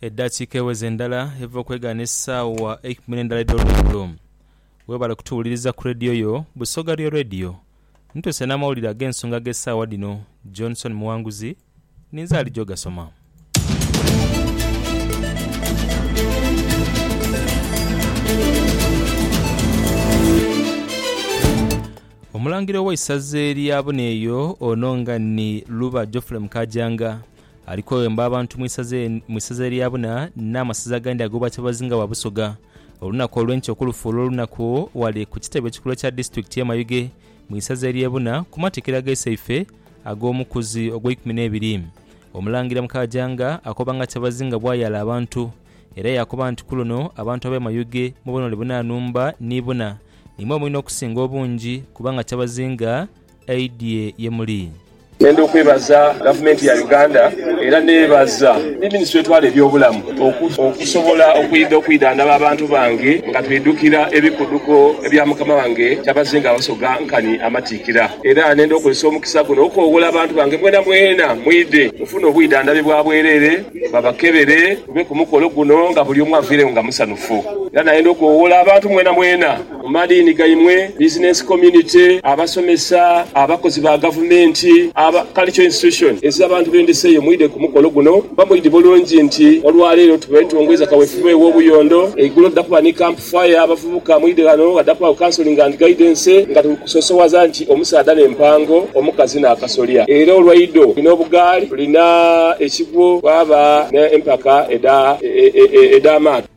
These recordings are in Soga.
Edhakiika eweze ndala eva okwegaana esaawa eikumi n'endala edh'olweggulo. Webale kutuwuliriza ku leediyo yo Busoga Real Radio. Ntuuse n'amawulire ag'ensonga ag'esaawa dhino. Johnson Muwanguzi ninze alija ogasoma. Omulangira ow'eisaza erya Buneeyo ono nga ni Luba Geoffrey Mukaajanga, Alikwewemba abantu mu isaza e, mu isaza erya buna, n'amasaza agandi ag'obwa kyabazinga wa Busoga. Olunaku olw'enkya okulufuula olunaku ghale ku kitebe ekikulu ekya disitulikiti y'e Mayuge mu isaza ery'e buna ku matikkira ga Iseife ag'omukuzi ogw'eikumi n'ebiri. Omulangira Mukaajanga akoba nga kyabazinga bw'ayaala abantu era yaakoba nti ku luno abantu ab'e Mayuge mu bunhole buna nhumba ni buna nimwe mwine okusinga obungi kubanga kyabazinga aidhie ye muli. Nenda okwebaza gavumenti ya Uganda era nebaza ni minisitule etwala ebyobulamu okusobola okwidha okwidhandhaba abantu bange nga twidhukira ebikuduko ebya mukama wange Kyabazinga Wasoga nkani amatiikira. Era nenda okozesa omukisa guno okoghola abantu bange mwenamwena mwidhe mufune obwidhandhabi bwa bwerere babakebere tube ku mukolo guno nga bulyomu avairegho nga musanhufu. Era nayenda okoghola abantu mwenamwena mu madiini gaimwe, bizinensi community, abasomesa, abakozi ba gavumenti, aba cultural institution eziza abantu b'endhisa eyo mwidhe ku mukolo guno kuba mwidhi bulungi nti olwaleero twetongoiza kawefube w'obuyondo eigulo tuda kuba ni camp fire abavubuka mwidhe ghano ghada kubagho counselling and guidance nga tuli kusosowaza nti omusaadha n'empango, omukazi n'akasolya era olwaidho tulina obugaali, tulina ekigwo, twaba n'empaka edha edh'amaato.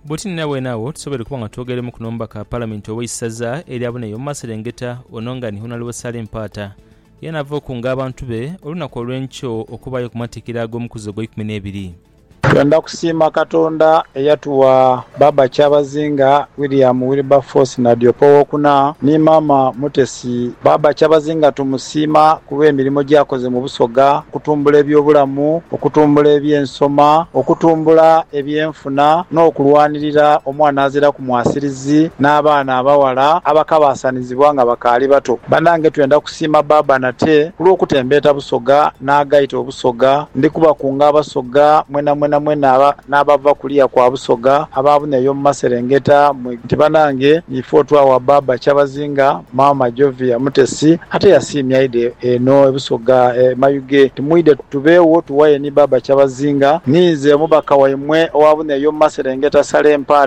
Bwoti ni nabwene agho tusoboire okuba nga twogeremuku n'omubaka wa Palamenti ow'eisaza erya Buna ey'omu maserengeta ono nga ni Honalebo Saleh Mpaata yena ava okunga abantu be olunaku olw'enkyo okubaayo ku matikkira ag'omukuzi ogw'eikumi n'ebiri. Twendha kusiima Katonda eyatuwa Baaba Kyabazinga William Wilberforce Nadiope Owokuna ni Maama Mutesa. Alex. Baaba Kyabazinga tumusiima ku lw'emirimo gy'akoze mu Busoga okutumbula ebyobulamu, okutumbula eby'ensoma, okutumbula ebyenfuna n'okulwanirira omwana azira ku mwasirizi n'abaana abaghala abakabaasanizibwa nga bakaali bato. Banange twenda kusiima baaba nate ku lw'okutembeeta Busoga n'agaita Obusoga. Ndi kubakunga Abasoga mwenamwena mwena aba. n'abava kuliya kwa busoga abaabune eyo mu maserengeta mwe nti, Banange, ife otwawa bbaabba Kyabazinga, maama Jovia Mutesi ate yasiimya aidhe eno e Busoga e Mayuge nti mwidhe tubeewo tuwaye ni bbaabba Kyabazinga. Ninze omubaka waimwe owaabune eyo mu maserengeta Saleh Mpaata.